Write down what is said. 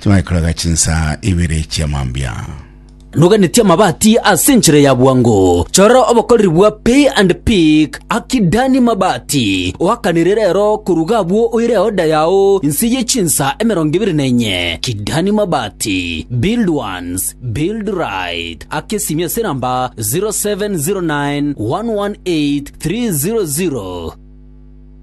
Timanye koraga chinsaa ibere chia mambia. Noganetie amabati ase enchera ya bwango. Chora obokoreri bwa Pay and Pick aki Dani Mabati oakanire rero koruga abwo oire oda yao inse ye chinsa emerongo ebere na enye. Kidani Mabati build once build right ake simi ase namba 0709 118 300.